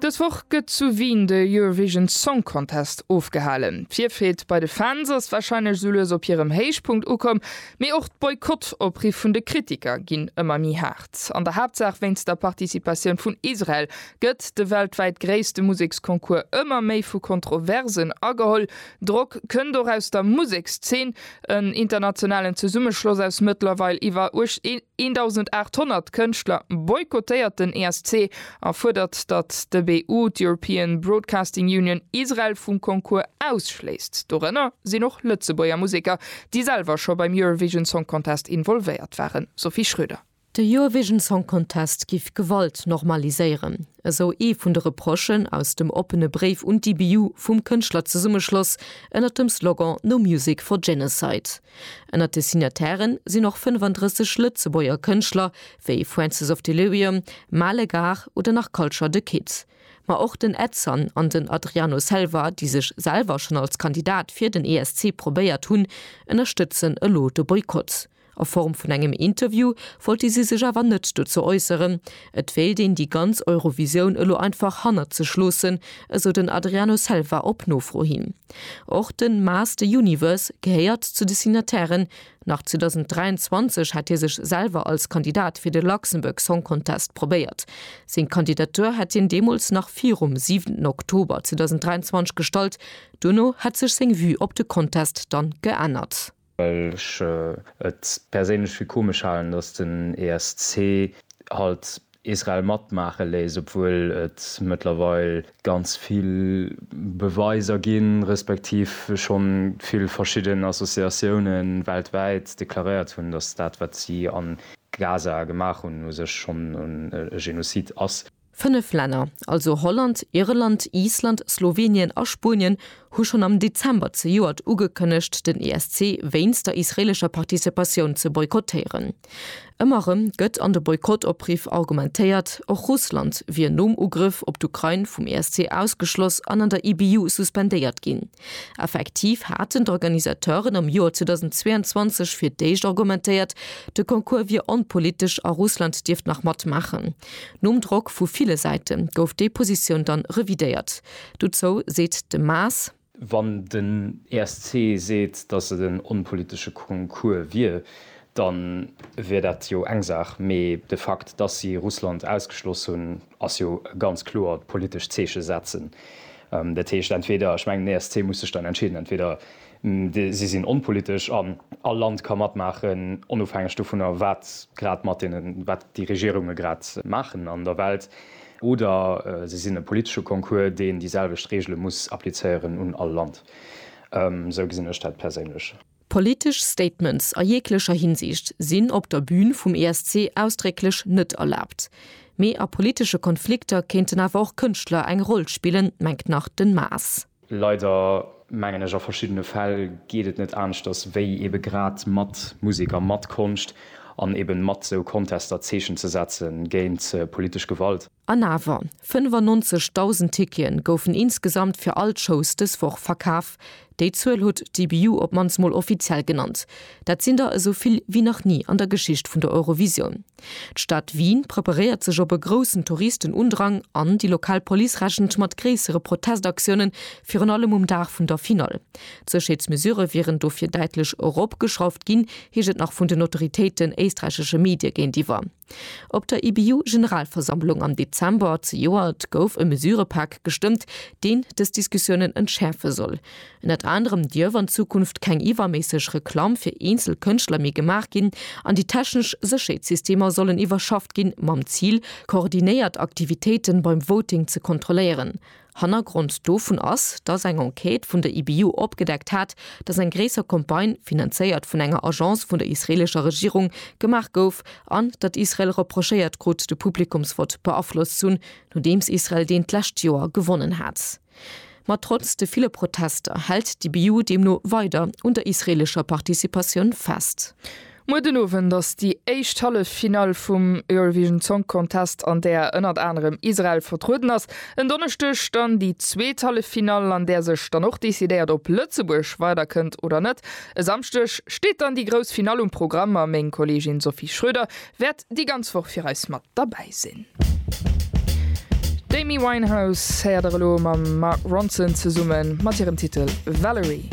Dës Woch gëtt zu Wien de Eurovision Song Contest ofgehalen. D'Virfreed bei de Fans ass warscheinlech sou lues op hirem Héichpunkt ukomm, mee och d'Boykott-Opriff vun de Kritiker ginn ëmmer méi haart. An der Haaptsaach wéinst der Participatioun vun Israel gëtt de weltwäit gréisste Museksconcours ëmmer méi vu Kontroversen ageholl, Drock kënnt och aus der Musekszeen. En internationalen Zesummeschloss aus mëttlerweil iwwer 1.800 Kënschtler boykottéiert den ESC a fuerdert, datt de BU, d'European Broadcasting Union, Israel vum Concours ausschléisst. Dorënner sinn och Lëtzebuerger Museker, déi selwer scho beim Eurovision Song Contest involvéiert waren. Sophie Schröder. De Eurovision Song Contest giff Gewalt normaliséieren, esou ee vun de Reprochen aus dem oppene Bréif un d'IBU vum Kënschtlerzesummeschloss ënnert dem Slogan No Music for Genocide. Ënnert de Signataire sinn och 35 Lëtzebuerger Kënschtler, wéi Francis of Delirium, Male Gar oder nach Culture The Kid. Ma och den Edson an den Adriano Selva, déi sech selwer schonn als Kandidat fir den ESC probéiert hunn, ënnerstëtzen elo de Boykott. A Form vun engem Interview wollte si sech awer net dozou äusseren. Et wéilt een déi ganz Eurovisioun elo einfach hannert sech loossen, esou den Adriano Selva op Nofro hin. Och de Maas the Universe gehéiert zu de Signatairen. Nach 2023 hätt hie sech selwer als Kandidat fir de Luxembourg Song Contest probéiert. Seng Kandidatur hätt hien deemools nach virum 7 Oktober 2023 gestallt. Duerno hätt sech seng Vue op de Contest dann geännert. well ech et perséinlech fir komesch halen, datt den ESC halt Israel matmaache léisst, obwuel et mëttlerweil ganz vill Beweiser ginn, respektiv schonn vill verschidden Associatiounen weltwäit deklaréiert hunn, datt dat wat si a Gaza gemaach hunn u sech schonn e Genozid ass. Fënnef Länner, also Holland, Irland, Island, Slowenien a Spuenien, hu schonn am Dezember zejoert ugekënnegt, den ESC wéinst der israeelescher Participatioun ze boykottéieren. Ëmmer erëm gëtt an de Boykott-Opriff argumentéiert, och Russland wier nom Ugrëff op d'Ukrain vum ESC ausgeschloss an an der IBU suspendéiert ginn. Effektiv haten d'Organisateuren am Joer 2022 fir d'éischt argumentéiert, de Concours wier onpolitesch a Russland dierft nach matmaachen. Nom Drock vu ville Säite gouf déi Positioun dann revidéiert. Dozou seet de Maas. Wann den ESC seet, datt et en onpolitesche Concours wier, da wier dat jo eng Saach, mee de Fakt, datt si Russland ausgeschloss hunn, ass jo e ganz kloert politescht Zeeche setzen. Dat heescht entweder, ech mengen den ESC muss sech dann entscheeden, entweder Si sinn onpolitesch an all Land ka matmaachen, onofhängeg dovunner, wat grad mat deenen, wat déi Regierunge grad maachen an der Welt. Oder se sinn e politesche Concours, deen déi selwecht Reegele muss applizéieren un all Land. Esou gesinn ech dat perséinlech. Politesch Statements a jeeglecher Hinsicht sinn op der Bün vum ESC ausdrécklech net erlaabt. Mee a politesche Konflikter kéinten awer och Kënschtler eng Roll spillen, mengt nach den Maas. Leider, mengen ech, a verschiddene Fäll geet et net aneschters, wéi ebe grad mat Musek a mat Konscht an eben mat sou Contester Zeechen ze setze géint politesch Gewalt. An awer, 95.000 Ticketen goufen insgesamt fir all d'Shows dës Woch verkaf. Déi Zuel huet d'EBU op mannst mol offiziell genannt. Dat sinn der esou vill wéi nach ni an der Geschicht vun der Eurovisioun. D'Stad Wien preparéiert sech op e groussen Touristenundrang an déi lokal Police rechent mat gréissere Protestaktiounen, virun allem um Dag vun der Finall. D'Sécherheetsmesurë wieren dofir däitlech eropgeschrauft ginn, heescht et nach vun den Autoritéiten éisträichesche Medie géintiwwer. Op der IBU-Generalversammlung am Dezember zejoert gouf e Mesurëpak gestëmmt, deen dës Diskussiounen entschäerfe soll. Ënnert anerem dierf an Zukunft keng iwwerméisseg Reklamm fir eenzel Kënschtler méi gemaach ginn an déi technesch Sécherheetssystemer sollen iwwerschafft ginn, mam Zil, koordinéiert Aktivitéiten beim Voting ze kontrolléieren. Hannergrond dovun ass, dass eng Enquête vun der IBU opgedeckt hat, dass eng gréisser Campagne, finanzéiert vun enger Agence vun der israelescher Regierung, gemaach gouf an datt Israel reprochéiert krut, de Publikumsvott beaflosst z'hunn, nodeems Israel deen d'lescht Joer gewonnen hat. Ma trotz de ville Protester hält d'IBU deemno weider un der israeelescher Participatioun fest. Muer den Owend ass déi éischt Halleffinall vum Eurovision Song Contest, an där ënnert anerem Israel vertrueden ass. En Donneschdeg dann déi zweet Halleffinall, an där sech dann och decidéiert, ob Lëtzebuerg weider kënnt oder net. E Samschdeg steet dann déi grouss Finall um Programm, a meng Kolleegin Sophie Schröder Wäert déi ganz Woch fir eis mat derbäi sinn. D'Amy Winehouse héiert der elo mam Mark Ronson zesummen mat hirem Titel Valerie.